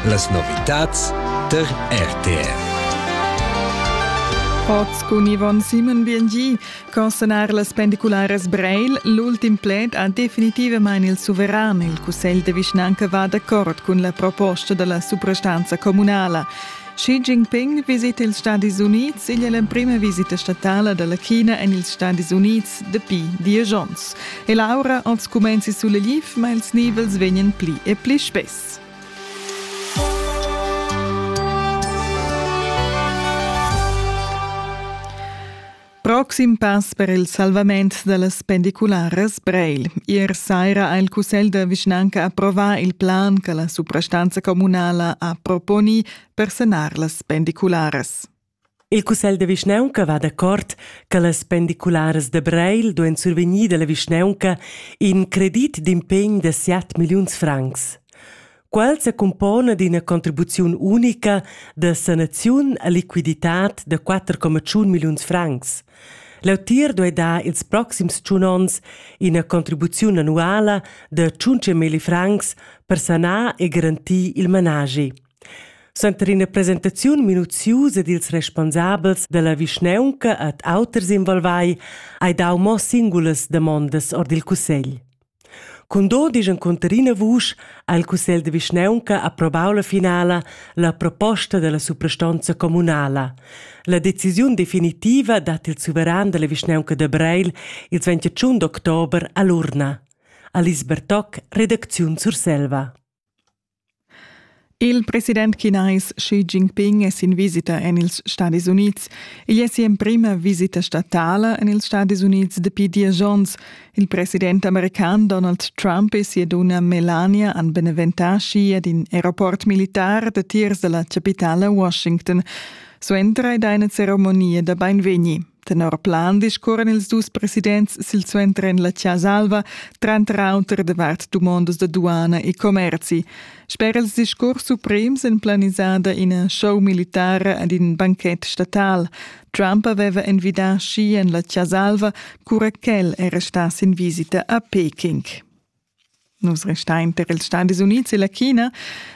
Las novitads der RTR. Oz cun Yvonne Simon BNG. Consonar las pendicularas Breil, l'ultim pled ha definitivamain il suveran. Il cussegl de vischnanca va d'accord cun la proposta della suprastanza comunala. Xi Jinping visita ils Stadis Unids igl è l'emprima visita statala da la China en ils Stadis Unids dapi diesch onns. E l'aura als cumenzi sulegliv, ma ils nivels vegnan pli e pli spess. Proxim pass per il salvament dallas pendicularas Breil. Ier saira ha il Cussegl da vischnanca approvà il plan che la suprastanza communala ha proponi per sanar las pendicularas. Il Cussegl da vischnaunca va d'accord che las pendicularas de Breil duein survegnir dalla vischnaunca in credit d'impegn de 7 milliuns francs. Quel secumpona d'ina contribuziun unica da sanaziun a liquiditad da 4,1 milliuns francs. L'autir duai dar ils proxims tschun onns ina contribuziun annuala da 5 milli francs per sanar e garantir il managi. Suenter ina presentaziun minuziusa dils responsabels dalla vischneunca ad auters involvai hai dau mo singulas damondas ord il cussegl. Cun do disch encunter ina vusch ha il cussegl de vischnaunca approvau la finala la proposta dalla suprastonza communala. La decisiun definitiva dat il suveran dalla vischnaunca da Breil ils 21 d'october all'urna. Alice Bertoc, redacziun Surselva. Il president chinais Xi Jinping è sin visita en ils Stadis Unids. Igl è si'emprima visita statala en ils Stadis Unids dapi diesch onns. Il president american Donald Trump e sia dunna Melania han beneventà Xi ad in aeroport militar datiers da la chapitala Washington. Suenter ed eine Zeremonie da beinvegni. Tenor plan discurran ils dus presidents silsuenter en la Chasa Alva, tranter auter davart dumondas da duana e commerzi. Sper ils discurs suprems en planisada ina show militara ad in banchet statal. Trump aveva envidà schi en la Chasa Alva, cura ch'el era stà sin visita a Peking. Nus restein per ils Stadis Unids e la China.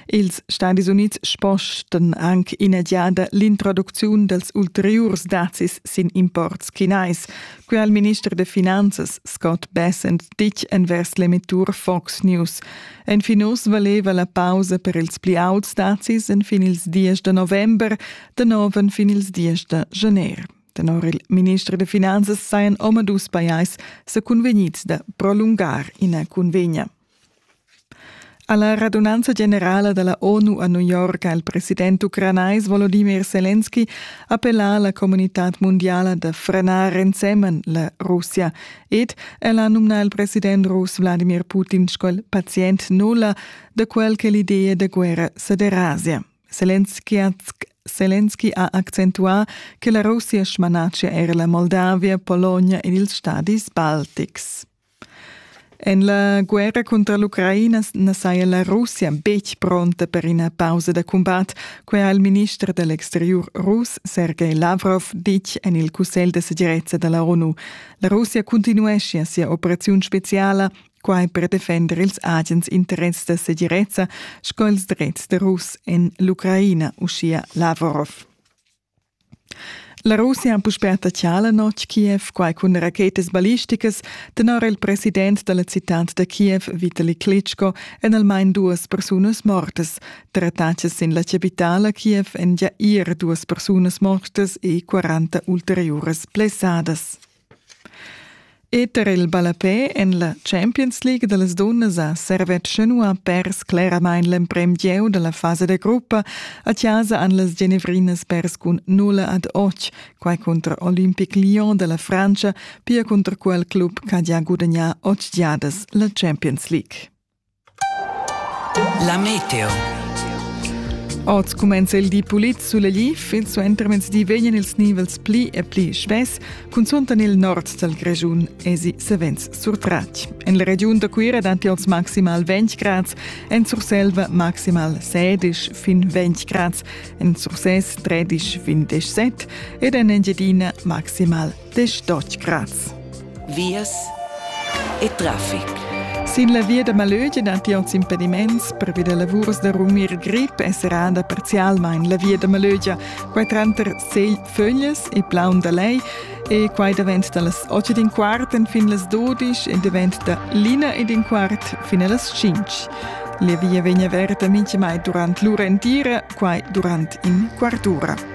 Ils Stadis Unids spostan anc ina giada l'introducziun dals ulteriurs dazis sin imports chinais. Quel ha il minister da finanzas Scott Bessent ditg envers l'emettur Fox News. Enfin uss valeva la pausa per ils pli auts dazis enfin ils 10 da november, da nov enfin ils 10 da gener. Tenor il minister da finanzas sajan omadus pajais sa cunvegnids da prolungar ina cunvegna. Alla radunanza generala della ONU a New York ha il president ucranais Volodymyr Zelensky appellà alla comunitad mondiala da frenar ensemen la Russia ed el ha nominà il president rus Vladimir Putin sco il pazient nulla da quel che l'idea da guerra sa derasia. Zelensky ha accentuà che la Russia smanatschia era la Moldavia, Pologna ed ils stadis baltics. En la guerra cunter l'Ucraina na saja la Russia betg pronta per ina pausa da cumbat, quai ha il minister dell exteriur russ Sergei Lavrov ditg en il Cussegl da segirezza da la ONU. La Russia cuntinueschia sia operaziun speziala quai per defender ils agens interess da segirezza sco ils drets da Rus en l'Ucraina, uschia Lavrov. La Russia ha puspè attaccà la notg Kiev, quai cun rachetas ballisticas, tenor il president da la citad da Kiev, Vitali Klitschko, en almain duas persunas mortas. Tra attacas sin la capitala Kiev èn gia ir duas persunas mortas e 40 ulteriuras blessadas. Eter il ballapè en la Champions League da las dunnas ha Servetsch nua pers cleramain l'emprim gieu da la fasa da gruppa. A chasa han las Genevrinas pers cun nulla ad oc, quai cunter Olympic Lyon da la Frantscha, pia cunter quel club ch'ha gia gudagnà otg giadas la Champions League. La meteo. Oz cumenza il di pulit suleglì, fin suentermezdi vegnan ils nivels pli e pli schvess, cunzunt en il nord dal Grischun esi savens surtratg. En la regiun da Cuira dapi oz maximal 20 grads, en Surselva maximal 16 fin 20 grads, en Surses 13 fin 17 ed en Engiadina maximal Dich dort grass. Vias e traffic. Sin la via da Malögia datiert impediments per via lavurs da rumir grip è serrada parzialmain la via da Malögia, quai tranter Segl Fögles e Plaun da Lei e quai davent da las 8 ed in quart fin las 12 e davent da l'ina ed in quart fin a las 5. La via vegn averta mintgamai durant l'ura entira, quai durant in quart ura.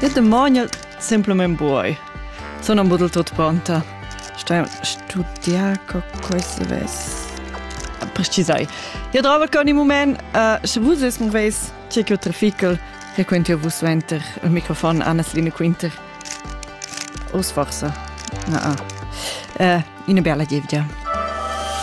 Io demogno semplament buoi. Sono un budel tot pronta. Sto studiar co queste ves. Precisai. Io trovo che ogni moment, uh, se vus es mon veis c'è che trafical, frequenti io vus venter il microfon Anna-Celine Quinter. Os forse. No, ah. Uh, una bella gievgia.